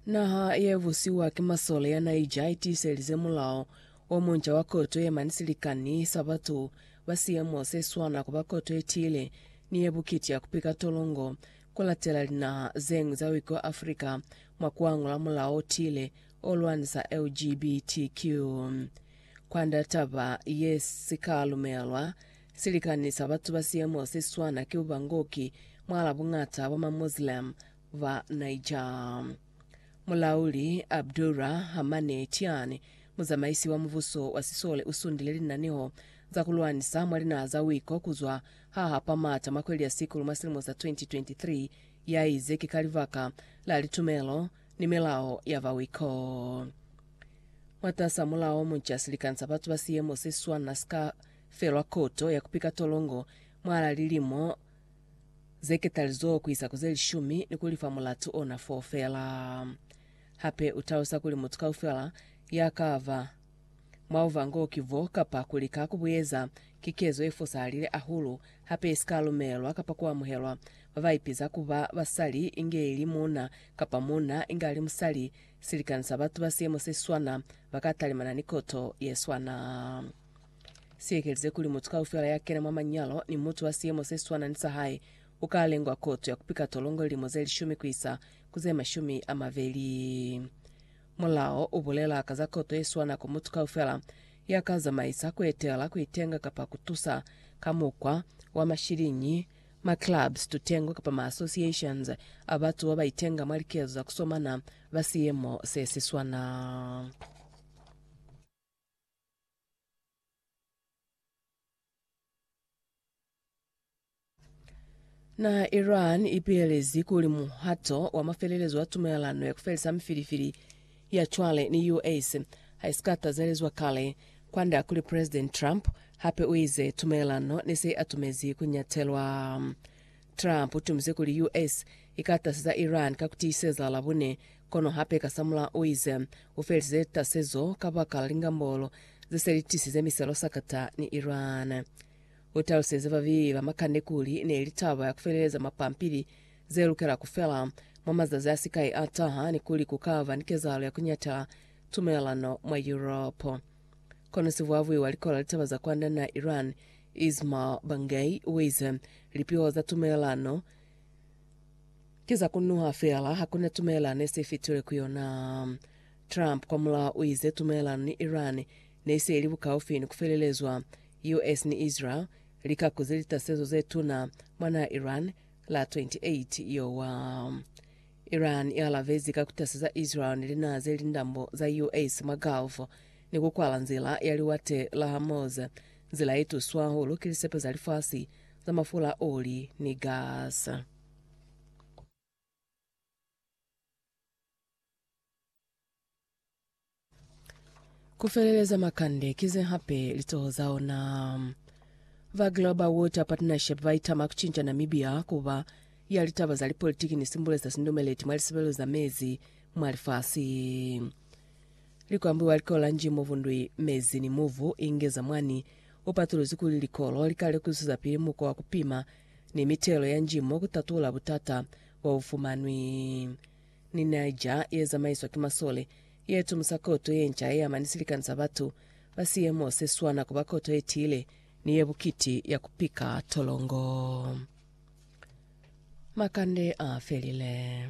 Naha ye busiwa ki masole ya Niger i tiiselize mulao o munca wa koto ye mani silikani sa batu ba siemo se swana ku ba koto ye tiile ni ye bukiti ya ku pika tolongo, ku latela linaha ze ñwi za wiki wa Africa mwa ku angula mulao o tiile o lwanisa LGBTQ. Kwand'a taba ye, si ka lumelwa silikani sa batu ba siemo se swana ki bubangoki mwal'a buñata bwa ma Muslim ba Niger. Mulauli Abdurra Hamane Tiani, muzamaisi wa mubuso wa sisole u sundile linaneho za ku lwanisa mwa linaha za wiko ku zwa ha hapa mata mwa kweli ya Sikulu mwa silimo sa 2023, ya ize ki ka libaka la litumelo ni milao ya ba wiko. Mwatas'a mulao munca, silikani sa batu ba siemo se si swana si ka felwa koto ya ku pika tolongo mwal'a lilimo ze ketalizoho ku isa ku ze lishumi ni ku li fa mulatu ona foo fela. Hape u talusa kuli mutu kaufela ya ka ba mwa bubango ki bo kapa ku lika ku bu eza, ki kezo ye fosahalile hahulu hape ye si ka lumelelwa kapa ku amuhelwa. Ba ba ipiza ku ba basali inge ili muuna kapa muuna inge a li musali, silikani sa batu ba siemo se si swana ba ka talimana ni koto ye swana. Siekelize kuli mutu kaufela ya kena mwa manyalo ni mutu wa siyemo se swana ni sa hae u ka lengwa koto ya ku pika tolongo lilimo ze lishumi ku isa ku ze mashumi a mabeli. Mulao u bulela ka za koto ye swana ku mutu kaufela ya ka zamaisa, ku etela, ku itenga kapa ku tusa ka mukwa wa mashiliñi ma clubs, tutengo kapa ma associations a batu ba ba itenga mwa likezo za ku somana ba siyemo se si swana. Naha ya Iran i pihelezi kuli muhato wa mafelelezo wa tumelelano ya ku felisa mifilifili ya cwale ni US ha i si ka tazelezwa kale, kwand'a kuli President Trump hape u ize tumelelano ne se i atumezi ku ñatelwa. Trump u tumize kuli US i ka taseza Iran ka ku tiiseza Labone Kono hape kasamulaho u ize, U felize tasezo kabaka la lingambolo ze se li tisize miselo sakata ni Iran. U taluseze babeli ba makande kuli ne li taba ya ku feleleza mapampili ze lukela ku fela mwa mazazi a si kai a taha ni kuli ku ka ba ni kezahalo ya ku nyatela tumelelano mwa Yuropo. Kono sivuavui wa Likola Litaba za Kwanda na Iran, Ismail Bangei, u ize, Lipiho za tumelelano Ki za kunuha feela, hakuna tumelelano ne se fitile ku yona. Trump kwa mulaho u ize tumelelano ni Iran ne se ili bukaufi ni ku felelezwa. US ni Israel li kakuze litasezo ze tuna mwa naha Iran la 28 Yowa. Iran i alabezi ka ku taseza Israel ni linaha ze li ndambo za US mwa Gulf ni ku kwala nzila ya Liwate la Hormuz, nzila ye tuswa hahulu ki lisepe za lifasi za mafula a oli ni gas. Ku feleleza makande ki ze hape litoho za ona. Ba Global Water Partnership ba itama ku cinca Namibia ku ba ya litaba za lipolitiki ni simbule za sindumeleti mwa lisebelo za mezi mwa lifasi. Likwambiwa likolo la nji mo vundwi mezi ni muvu inge za mwani, u patuluzi kuli likolo li ka lekusuza pili mukwa wa ku pima ni mitelo ya njimo ku tatula butata bo bu fumanwi ni Niger ye zamaiswa ki masole, ye tumusa koto ye nca ye ama ni silikani sa batu ba siemo se swana ku ba koto ye tiile ni ye bukiti ya ku pika tolongo. Makande a felile.